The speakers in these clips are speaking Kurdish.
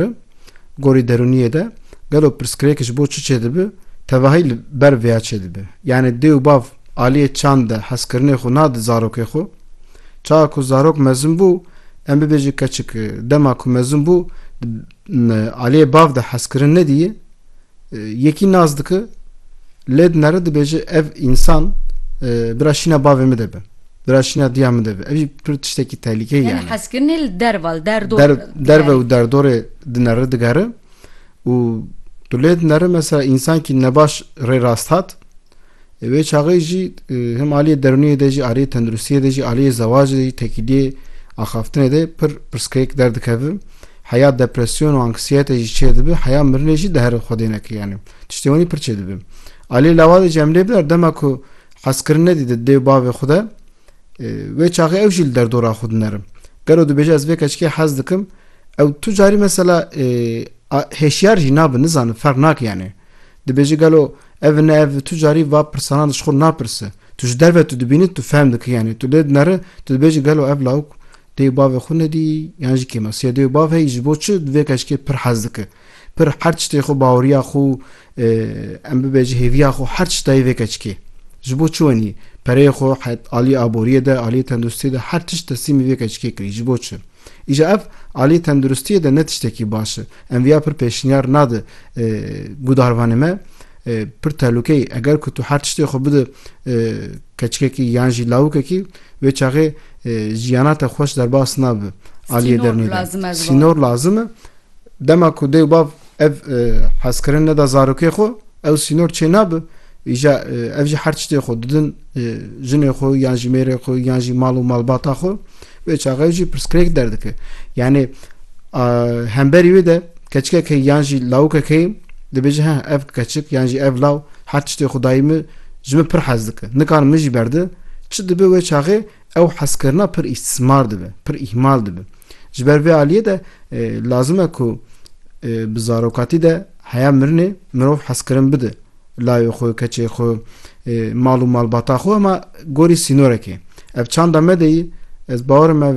Bi gorî derûniyê de gelo pirsgirêk ji bo çi çêdibi tevahî li ber vêya çêdibi. Yanî dê û bav aliyê çand de hezkirinê xwe nadi zarokê xwe. Çawa ku zarok mezin bû, em bibêjin keçik dema ku mezin bû di aliyê bav de hezkirin nedîye, Yekî nas dike lê di nere dibêje ev însan bira şîna bavê min de be. Bira şîna diya min de be. Ev jî pir tiştekî tehlîkeyê yani. Yani hezkirinê li derve li derdor. Der, derve û derdorê di nere digere û tu lê di nere mesela însankî nebaş rê rast hat Di vê çaxê jî hem aliyê derûniyê de jî aliyê tenduristiyê de jî aliyê zewacê de jî tekîliyê axaftinê de pir pirsgirêk derdikeve. Heya depresyon û anksiyete jî çê dibe, heya mirinê jî di herî xwedê neke yanî. Tiştê winî pir çê dibe. Aliyê lawa de jî em lê bidar dema ku hezkirin nedî di dê û bavê xwe de wê çaxê ew jî li derdora xwe dinerim. Gelo dibêje ez vê keçikê hez dikim ew tu carî mesela hêşyar jî nabe nizanim ferq nake yanî. Dibêje gelo ev ne ev tu carî va pirsanan di ji xwe napirse. Tu ji derve tu dibînî tu fehm dikî yanî tu lê dineri tu dibêjî gelo ev lawik dê û bavê xwe nedî yan jî kêma siya dê û bav heyî ji bo çi di vê keşkê pir hez dike pir her tiştê xwe baweriya xwe em bibêjî hêviya xwe her tişt dayê vê keşkê ji bo çi wenî pereyê xwe aliyê aboriyê de aliyê tenduristiyê de her tişt teslîmî vê keşkê kirî ji bo çi Îja ev aliyê tenduristiyê de ne tiştekî baş e. Em viya pir pêşniyar nade guhdarvanê me. Pir tehlûkeyî eger ku tu her tiştê xwe bide keçikekî yan jî lawikekî wê çaxê jiyana te xweş derbas nabe aliyê derûnê de. Sînor lazim e. Dema ku dê û bav ev hezkirin neda zarokê xwe ew sînor çê nabe. Îja ev jî her tiştê xwe didin jinê xwe yan jî mêrê xwe yan jî mal û malbata xwe vê çaxe ew jî pirsgirêk derdike. Yanê hemberî wê de keçikeke yan jî lawikeke dibêje heh ev keçik yan jî ev law her tiştê xwe dayî min ji min pir hez dike. Nikan min jî berde çi dibe wê çaxê Ew hezkirina pir îstîsmar dibe, pir îhmal dibe. Ji ber vê aliyê de lazim e ku bi zarokatî de heya mirinê mirov hezkirin bide layê xwe, keçê xwe, mal û malbata xwe hema gorî sînorekê. Ev çanda me de yî, ez bawerim ev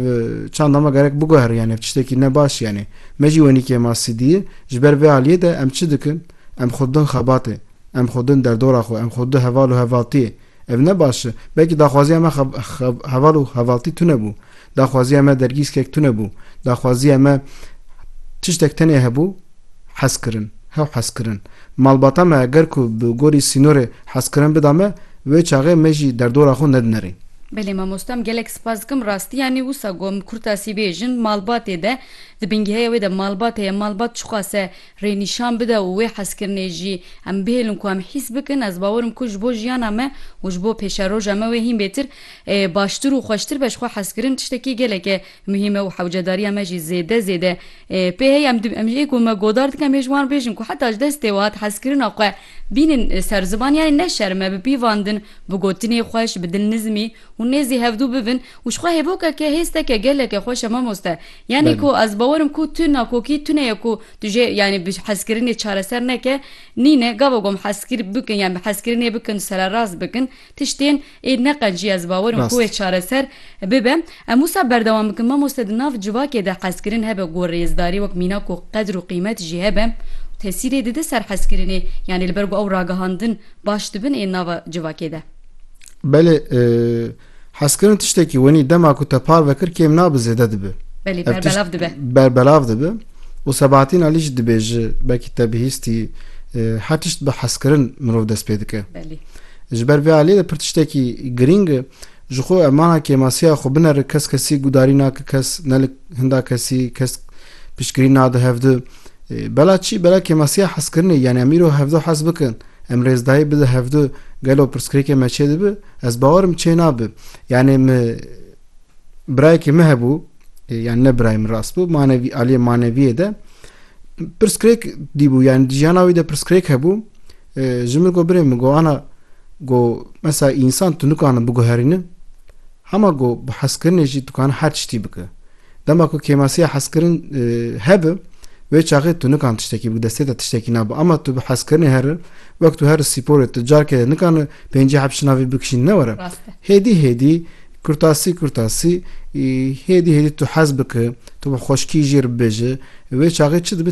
çanda me gerek biguherî yanî ev tiştekî ne baş yanî. Me jî wenîkê ma sîdiyê. Ji ber vê aliyê de em çi dikin? Em xwe didin xebatê, em xwe didin derdora xwe, em xwe didin heval û hevaltiyê. Ev ne baş e. Belkî daxwaziya me heval û hevaltî tune bû. Daxwaziya me dergîskek tune bû. Daxwaziya me tiştek tenê hebû, hezkirin. Hew hezkirin. Malbata me eger ku bi gorî sînorê hezkirin bida me, wê çaxê me jî derdora xwe nedinerî. Belê mamostam gelek spas dikim rastî yanî wisa got min kurtasî bêjin malbatê de di bingehê wê de malbat heye malbat çiqas e. rê nîşan bide û wê hezkirinê jî em bihêlin ku em hîs bikin, ez bawer im ku ji bo jiyana me û ji bo pêşeroja me wê hîn bêtir, baştir û xweştir be. Ji xwe hezkirin tiştekî geleke muhîm e û hewcedariya me jî zêde zêde pê heye. Em em ji ku me godar dikin em ê ji wan bêjin ku heta ji destê we hat hezkirina xwe bînin ser ziban yanî neşerime bipîvandin bi gotinê xweş, bi dilnizmî û nêzî hevdû bibin û ji xwe hêbokeke hêsteke geleke xweş e mamoste. Yanî ku ez bawer im ku tu nakokî tune ye ku tu jê yanî bi hezkirinê çareser neke, nîne gava gom hezkir bikin yan bi hezkirinê bikin sererast bikin tiştên ê neqencî ez bawer im ku wê çareser bibe. Em wisa berdewam bikin mamoste di nav civakê de hezkirin hebe ku rêzdarî wek mînak û qedr û qîmet jî hebe û tesîrê dide ser hezkirinê yanî li ber ku ew ragihandin baş dibin ê nava civakê de. Belê. Hezkirin tiştekî wenî dema ku te parve kir kêm nabe zêde dibe. Belê Ev tişt berbelav dibe. berbelav dibe û Sebahatîn Alî jî dibêje belkî te bihîstî e, her tişt bi hezkirin mirov dest pê dike. Belê. Ji ber vê aliyê de pir tiştekî girîng e. Ji xwe em mana kêmasiya xwe binere kes kesî gudarî nake kes ne li hinda kesî kes piştgirî nade hevdu. E, Bela çi? Bela kêmasiya hezkirinê yanî em îro hevdu hez bikin. Em rêz dayê bide hevdu gelo pirsgirêkê me çê dibi? Ez bawer im çê nabi. Yanê mi birayekê mi hebû yani ne birayê min rast bû manevî aliyê maneviyê de pirsgirêk dîbû yani di jiyana wî de pirsgirêk hebû ji min got birê min got ana got mesela însan tu nikanin biguherînin Hema ku bi hezkirinê jî dikane her tiştî bike. Dema ku kêmasiya hezkirin hebe, wê çaxê tu nikan tiştekî bike, destê te tiştekî nabe. Ama tu bi hezkirinê here, wek tu here spîporê, tu carkê de nikane pêncî heb şinavî bikişîn ne were. Hêdî hêdî, kurtasî kurtasî, hêdî hêdî tu hez bike, tu bi xweşkî jêr bibêje, wê çaxê çi dibe